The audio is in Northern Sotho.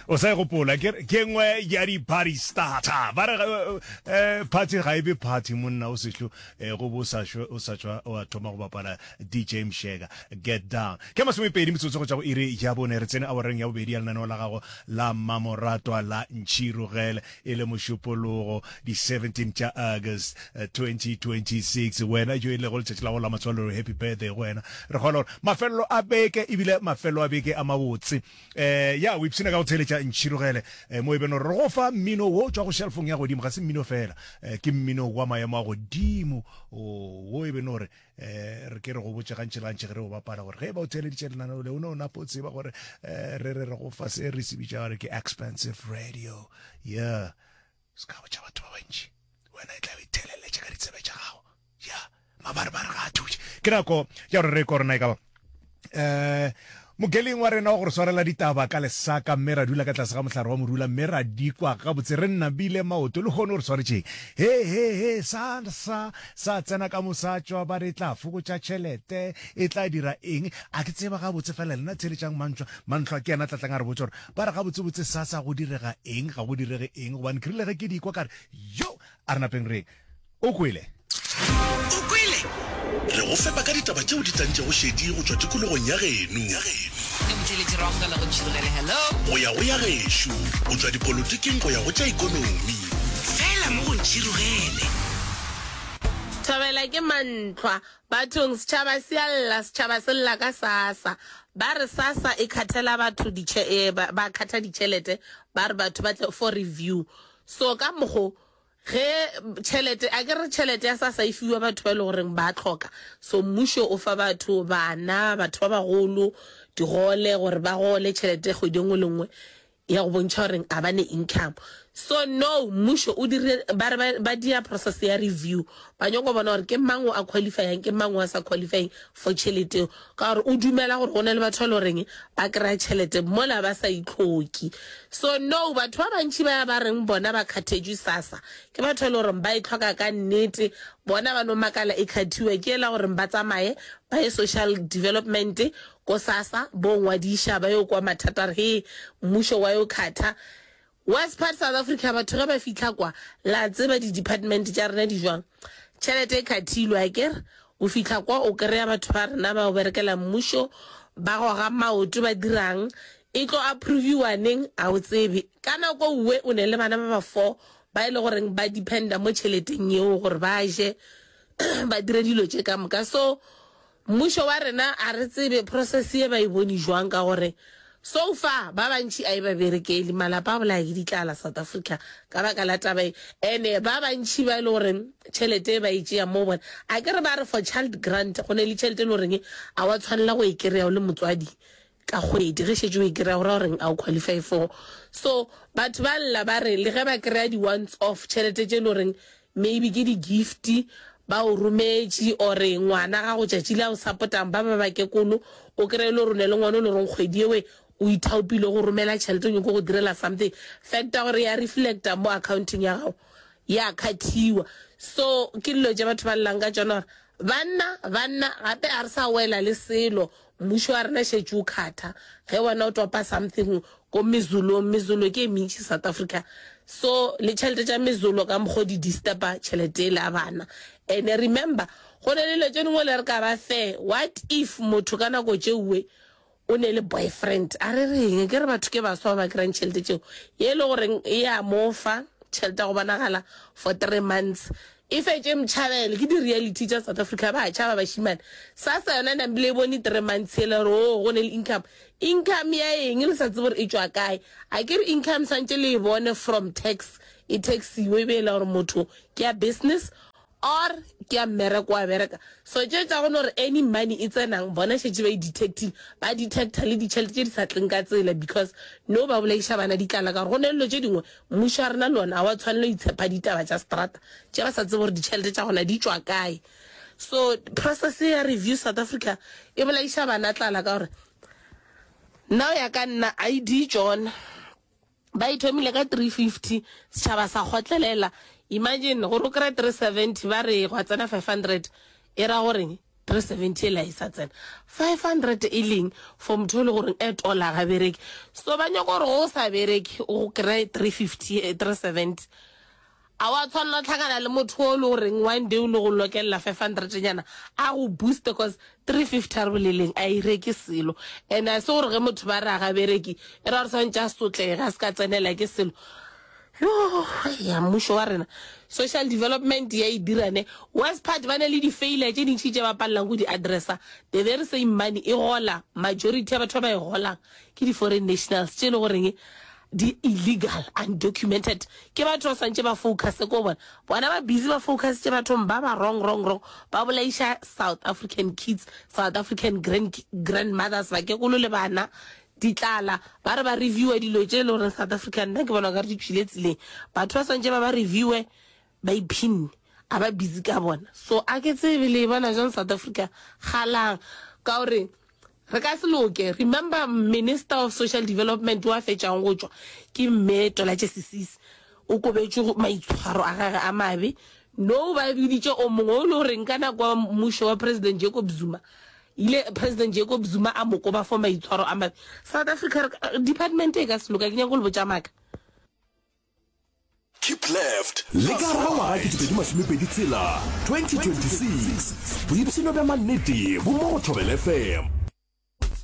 o sa e gopola ke ke ngwe ya di-party starter ba re um party ga e be party monna o sehlo um go bo o sa shwe- o sa tšwa o a thoma go bapala dj mshega get down ke masomepedi metsotso go tšwa go iri ya bone re tsene awareng ya bobedi ya lenaneo la gago la mmamoratwa la ntšhirogele E le Mošupologo, di 17 tša August 2026, wena jo e lego letšatši la gago la matswalelo, happy birthday go wena. Re kgolwa gore mafelelo a beke e bile mafelelo a beke a mabotse. Eh, ya, o ipshina ka go theeletša Ntšhirogele, eh, mo e beno re go fa mmino wo tšwa go šelfong ya godimo, ga se mmino fela, eh, ke mmino wa maemo a godimo, oh, wo e beno re um re ke re go botse gantši le gantši ge re o bapala gore ge ba o theeleditše lenaneo le o ne o napo tseba gore um re re re go fa se re se bitša gore ke expensive radio yeah se ka botša batho ba bantši wena e tla o itheleletše ka ditsebe tša gago ya mabarebare ga a thuše ke nako ya gore re korona e ka ba eh mokeling wa rena wa gore swarela ditaba ka lesaka mme ra dula ka tlase ga mohlare wa morula mme ra dikwa gabotse re nnabile maoto le kgone gore swaretšeng he he he sa sa sa tsena ka mosatswa ba re tla fokotša tšhelete e tla dira eng a ke tseba gabotse fela lena tsheletšang mantlwa mantlwa ke yena tlatlang a re botsa gore ba re gabotsebotse sa sa go direga eng ga go direge eng gobane ke rile ge ke dikwa kare yo a re napeng reng O kwele? O kwele? Re go fepa ka ditaba tšeo di tlantšego šedi go tšwa tikologong ya geno. Go ya go ya gešo, go tšwa dipolotiking go ya go tša ikonomi. Fela mo go ntšhirugele. Thabela ke mantlhwa bathong setšhaba se a lla setšhaba se lla ka sasa ba re sasa e khathela batho ba khatha ditšhelete ba re batho ba tle for review so ka mokgo Ge tšhelete, a ke re tšhelete ya sasa e fiwa batho ba e le goreng ba tlhoka, so mmušo o fa batho, bana, batho ba bagolo, digole gore ba gole tšhelete kgwedi e nngwe le nngwe ya go bontšha gore ga ba ne income. So no, mmušo o dire, ba re ba, ba dia process ya review, ba nyako bona gore ke mang o a qualify-ang, ke mang o a sa qualify-eng for tšhelete eo, Ka gore o dumela gore go na le batho ba e le goreng ba kry-a tšhelete mola ba sa itlhoki. So no, batho ba bantši ba ba reng bona ba kgathetšwe sassa ke batho ba e le goreng ba e tlhoka ka nnete. Bona ba no makala e kgathiwa ke e la goreng ba tsamaye ba ye social development ko sassa bo ngwadiša ba yo kwa mathata a re hee mmušo wa yo khatha. Worst part South Africa batho ge ba fihla kwa la tseba di department tša rena di jwang tšhelete e khathilwe aker o fihla kwa o kreya batho ba rena ba o berekela mmušo ba goga maoto ba dirang e tlo approviwa neng a o tsebe ka nako uwe o ne le bana ba ba four ba e le goreng ba dependa mo tšheleteng yeo gore ba je ba dire dilo tše ka moka so Mmušo wa rena a re tsebe process ye ba e bone jwang ka gore so far ba bantši a e ba berekeli, malapa a bolaya ke ditlala South Africa ka baka la taba ye ene ba bantši ba e le gore tšhelete e ba e tšea mo bona a ke re ba re for child grant go ne le tšhelete e le goreng a wa tshwanela go e kry-a o le motswadi ka kgwedi ge šetše o e kry-a gora goreng a o qualify for so batho ba lla ba re le ge ba kry-a di once off tšhelete tše e le goreng maybe ke di gift ba o rometše ore ngwana ga go tšatši la o sapotang ba ba bakekolo o kry-e le rone le ngwana o le goreng kgwedi ewe o ithaopile go romela tšhelete o nyoko go direla something facta gore ya reflecta mo accounting ya gago ya kgathiwa so ke dilo tše batho ba llang ka tsona gore banna banna gape ga re sa wela le selo Mmušo wa rena šetše o khatha ge wena o topa something ko mezulong. Mezulo ke e mentši South Africa so le tšhelete tša mezulo ka mokgo di disturba tšhelete ele ya bana. And remember go na le dilo tše dingwe le re ka ba fair. What if motho ka nako tšeue o ne le boyfriend a re reng? Ke re batho ke baswa ba ba kry-ang tšhelete tšeo. Ye ele goreng e a mo fa tšhelete ya go bonagala for three months. E fetše mtšhabele ke di reality tša South Africa ba tšhaba bašimane. Sassa yona ne mbile e bone three months yela gore oo go ne le income. Income ya eng le sa tsebe gore e tšwa kae. A ke re income swantše le e bone from tax e taxiwe e be ela gore motho ke ya business or ke ya mmereko wa bereka. So tše tša go no re any money e tsenang bona šetše ba e detectile ba detector le ditšhelete tše di sa tleng ka tsela because no ba bolayiša bana di tlala ka gore go ne le dilo tše dingwe Mmušo wa rena le ona ga wa tshwanela go itshepa ditaba tša seterata tše ba sa tsebe gore ditšhelete tša gona di tšwa kae. So process ya Review South Africa e bolaiša bana tlala ka gore nna go ya ka nna ID tšona ba e thomile ka 350 setšhaba sa kgotlelela. Imagine gore o kry-e 370 ba re gwa tsena 500 e ra goreng? 370 ela esa tsena 500 eleng for motho ele gore at all a ga bereke so ba nyoko gore go sa bereke o go kry 350 370 a wa tshwanela tlhakana le motho o le gore one day o le go lokela 500 nyana a go boost because 350 re boleleng a ireke selo and a se gore ge motho ba re a ga bereke era re swantse a sotlega se ka tsenela ke selo Yoo ya mmušo wa rena social development ya e dira ne worst part ba ne le di-failure tše dintšhi tše ba palelang go di-addressa the very same money e gola majority ya batho ba ba e golang ke di-foreign nationals tše e le goreng di-illegal undocumented ke batho ba swantše ba focuse ko bona bona ba busy ba focus tše bathong ba ba wrong wrong wrong ba bolaiša south african kids south african grand grandmothers bakekolo le bana Di tlala. Ba re ba reviewer dilo tše e le goreng South Africa nna ke bona o ka re di tšwile tseleng. Batho ba swantše ba ba reviewer ba iphinne. A ba busy ka bona. So a ke tsebe le e bona bjang South Africa galang. Ka gore re ka se loke. Remember Minister of Social Development o a fetšang go tšwa ke Mme Tolatše Sisisi. O kobetšwe go maitshwaro a gage a mabe. Now ba biditše o mongwe o e le goreng ka nako ya mmušo wa President Jacob Zuma Ile President Jacob Zuma a mo koba for maitshwaro a mabe. South Africa re ka, department e ka se loka, ke nyaka go le botša maaka. Keep left. Le ka ga ngwaga ke dipedi masome pedi tshela, 2026, boipshino bja mannete bo mo go Thobela FM.